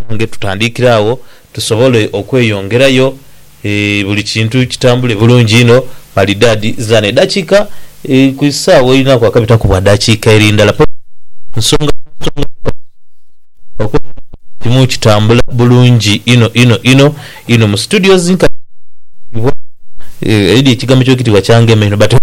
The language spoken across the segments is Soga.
Banange tutandikire agho tusobole okweyongerayo buli kintu kitambule bulungi inho maridadi zidhano edakika ku isaawa erinaku akabitaku bwa dakika eri ndala paka nsonga nsonga okwonga okuba nga buli kimu kitambula bulungi inho inho inho inho mu studio zinkanhi dhitibwa eidhi ekigambo ekyo kitibwa kyangema inho but hope.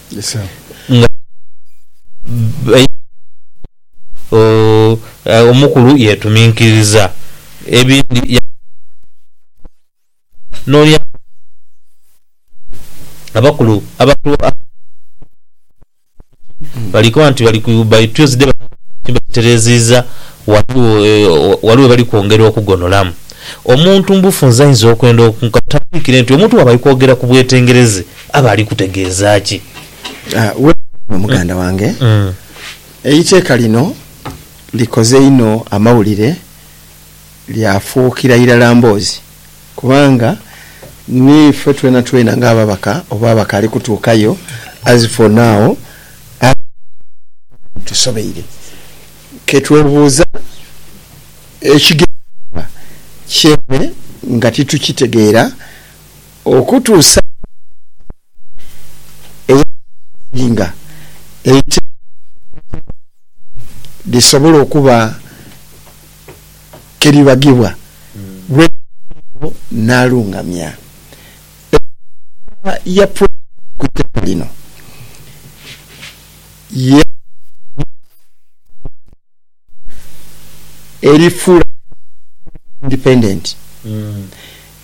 nga bainhe obubonero obwo. Omukulu yeetuminkiriza ebindi yaagenda n'oli amulinha ati, Abakulu abatuwa amagezi ago bali koba nti bali ku by Tuesday banaaba nga bakitereeziiza ghali we bali kwongera okugonolamu. Omuntu mu bufunze ayinza okwenda ku katandikire nti omuntu bw'aba ali kwogera ku bwetengereze Aba ali kutegeeza ki? Weewaawo muganda wange. Eiteeka lino likoze inho amawulire lyafuukira irala mboozi kubanga ni ife twenatwena ng'ababaka oba abakaali kutuukayo as for now ababaka tusobeire. Ke twebuuza ekigendererwa ky'enhe nga titukitegeera. Okutuusa bwe Ddembe eya Baazinga eiteebwa Ddembe lisobola okuba ke libagibwa, Rwezimana eyo n'alungamya ensonga ya Pulezidenti ku itaka lino, yaaghayo eiteeka erifuula Buganda Independent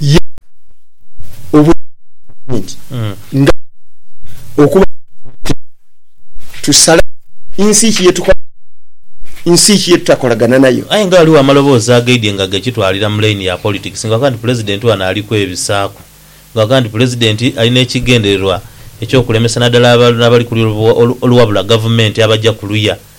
Ye obwedha nti nga tumaze okuba n'obusobozi obwo, tusale nsi ki ye tukolagana nayo, nsi ki ye tutakolagana nayo. Aye nga ghaligho amaloboozi agaidhie nga gakitwalira mu layini ya politics nga ghaga nti Pulezidenti ghano ali kwebisaaku nga ghaga nti Pulezidenti ali n'ekigendererwa eky'okulemesa naddala abali ku luya oluwabula Gavumenti abaja ku luya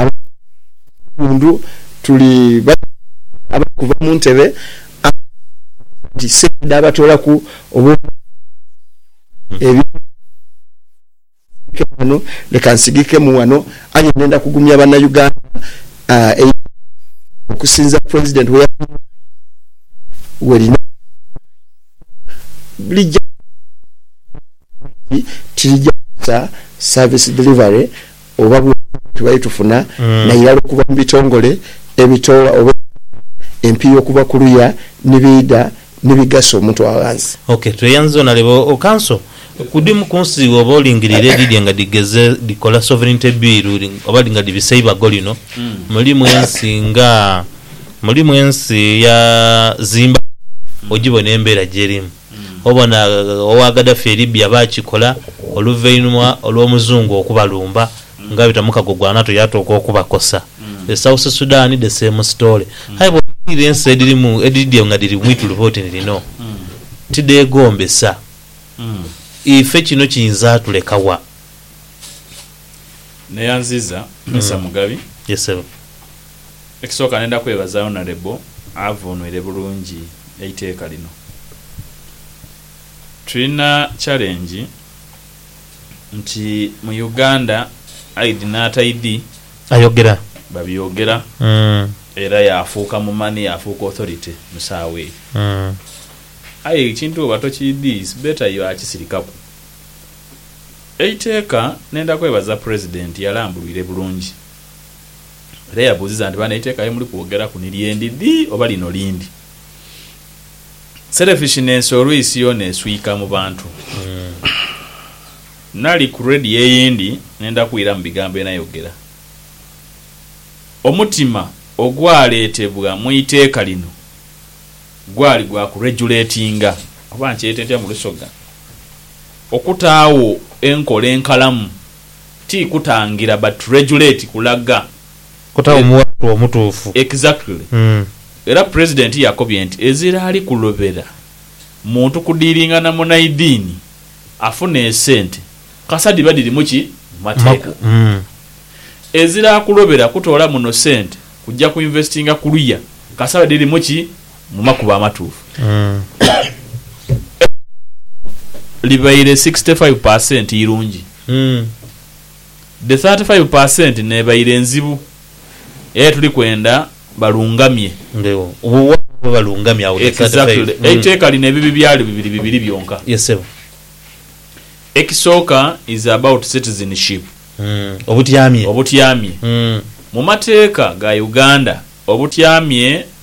Ab'ebighundhu tuli bategeerekese abali kuva mu ntebe abaali bateebereza nti sente dhaabatoolaku obw'okuba nga baali bakoze ebintu ebitali bya bulimba. Leka nsigikemu ghano, leka nsigikemu ghano aye ndenda kugumya Bannayuganda einhuma okusinza President we yaviiramu aye we lina okuva lija kukosa gavumenti tilija kukosa service delivery oba bwongo bwe tubadde tufuna nairala okuva mu bitongole ebitoola oba eby'obughangwa, empiiya okuva ku luya ni biidha ni bigasa omuntu wa ghansi. Ok, tweyanziza onaleba o Kanso. Ku dhimu ku nsi bwoba olingirire edhidhye nga dhigeze dhikola Sovereignty Bill oba nga dhibisa eibago lino, mulimu ensi nga, mulimu ensi ya Zimbabwe, ogibona embeera gyerimu. Obona owa Gaddafi e Libya baakikola oluvainhuma olw'omuzungu okubalumba nga abita mu kago gwa NATO yaatuuka okubakosa. E South Sudan the same story. Aye bw'otunuulira ensi edhirimu edhidhye nga dhiri mu ituluba oti ni lino, tidheegombesa. Ife kino kiyinza tuleka wa? Neyanziza Mister Mugabi. Yes Ssebo. Ekisooka ndenda kwebaza Honourable avunwire bulungi eiteeka lino. Tulina challenge nti mu Uganda aidhi n'ataidhi Ayogera. babyogera era yaafuuka mumani yaafuuka authority mu saawa eyo. Aye ekintu bwoba tokiidhi it's better you akisirikaku. Eiteeka ndenda kwebaza President yalambulwire bulungi. Era yabuuziza nti, Bano eiteeka lye muli kwogeraku ni lye ndidhi oba lino lindi? Selfishness olwisi yoona eswika mu bantu. Nali ku radio eyindi nenda kwira mu bigambo bye nayogera. Omutima ogwaleetebwa mu iteeka lino gwali gwa ku regulatinga, oba nkyete ntya mu Lusoga, okutaagho enkola enkalamu. Ti kutangira but regulate kulaga. Kutagho muwatu omutuufu. Exactly. Era president yakobye nti ezira ali kulobera muntu kudiringa na munaidiini afune esente kasa diba dirimu ki mumateeka. Ezira akulobera kutoola muno sente kujja ku investinga kuluya kasa dirimu ki Mu makubo amatuufu, ebbanga lino libaire sixty five per cent irungi, the thirty five per cent n'ebaire nzibu aye tuli kwenda balungamye. Exactly. Eiteeka lino ebibi byalyo bibiri bibiri byonka. Ekisooka is about citizenship, obutyamye. Mu mateeka ga Uganda, obutyamye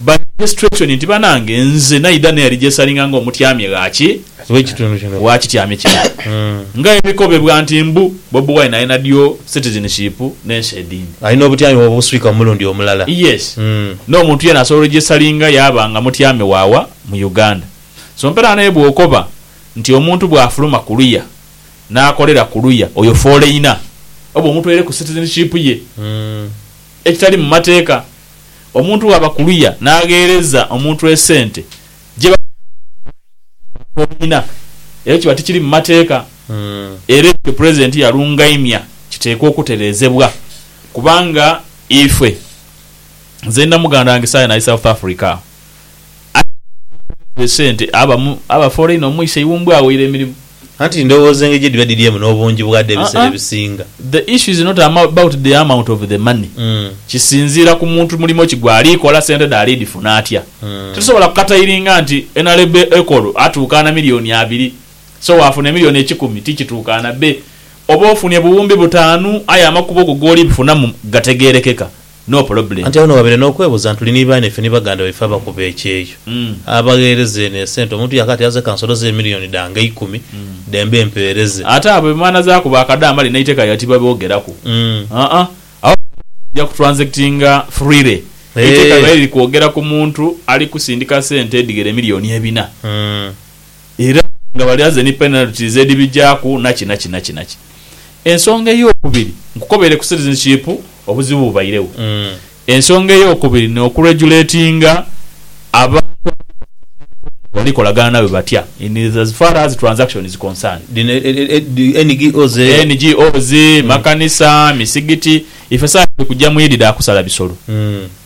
By registration nti banange nze naidha nerijesalinga nga omutyamye ghaki? Wakityamye kino nga ebikobebwa nti mbu Bobi Wine alina dual citizenship nensi edindi. Alina obutyami bwo buswika omulundi omulala. Yes nomuntu yena asobola orijesalinga yaba nga mutyami wawa mu Uganda. So mperaano aye bwokoba nti omuntu bwafuluma kuluya nakolera kuluya oyo foleina oba omutwaireku citizenship ye ekitali mumateeka. Omuntu bw'aba ku luya n'agheereza omuntu esente gye bamuwa okuva mu kibiina, ekyo kiba tikiri mu mateeka era ekyo Pulezidenti yalungaimya kiteekwa okutereezebwa kubanga ife, nze ndi na muganda wange saaghe n'ali South Africa, Atenga abakozi be sente abamu abafoola inho omwise Iwumbwe aweire emirimu. Anti ndhowooza engeri gye dhiba dhiriemu n'obungi bwadho ebiseera ebisinga. The issue is not about the amount of the money, kisinziira ku muntu mulimo ki gwali kola, sente dhe ali dhifuna atya. Titusobola kukatairinga nti NRB Ecol atuukaana milioni abiri so waafuna emilioni ekikumi ti kituukaana. Be oba ofunye buwumbi butaanu aye amakubo go g'oli bifunamu gategeerekeka. No problem. Anti agho noghabaire nokwebuuza ntuli ni baana ife ni baganda baife abakuba ekyeyo, abagheereza eno esente omuntu yaaka ati aze kansoloze emillion dhange eikumi dembe mpeereze. Ate abo emana zaaku ba kadaama lino eiteka lya tibaboogeraku. Aa, abo baja ku transactinga freely. Eiteka lyaire liri kwogera ku muntu ali kusindika sente edhighera emillion ebina. era nga balyaze ni penalties edhibigyaku naki naki naki naki. Ensonga ey'okubiri, nkukobeire ku citizenship obuzibu bubairegho. Ensonga ey'okubiri ni okuregulatinga abantu abakola bali kolagana nawe batya in as far as transaction is concerned. Dhino NGOs eyo. NGOs, makanisa, misigiti, ife saagha dhiri kugya mu Idi dha kusala bisolo.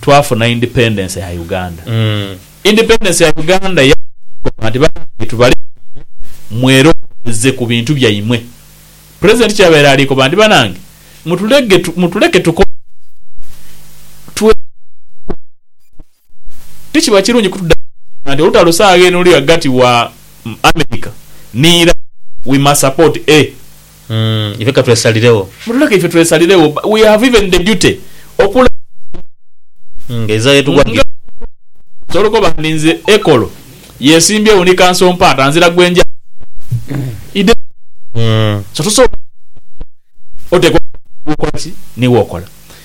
twafuna independence ya Uganda. Independence ya Uganda yatukoba nti banange tubalekere mwerowooleze ku bintu byaimwe. President kyabaire ali koba nti banange mutulege mutuleke tukole twebale kukola. Tikiba kirungi kutudamaging nti olutalo saagha eno luli ghagati wa America ni Iran we must support a. Umm ife katwesaliregho. Mutuleke ife twesaliregho we have even the duty okulaba Nga ezira yetugwa nga ddi? Osobola okoba ndi nze Ekolo yesimbyewo ni kanso mpaata nzira gwe nja He doesn't Umm. so tosobola oteekwa okola ki ni wokola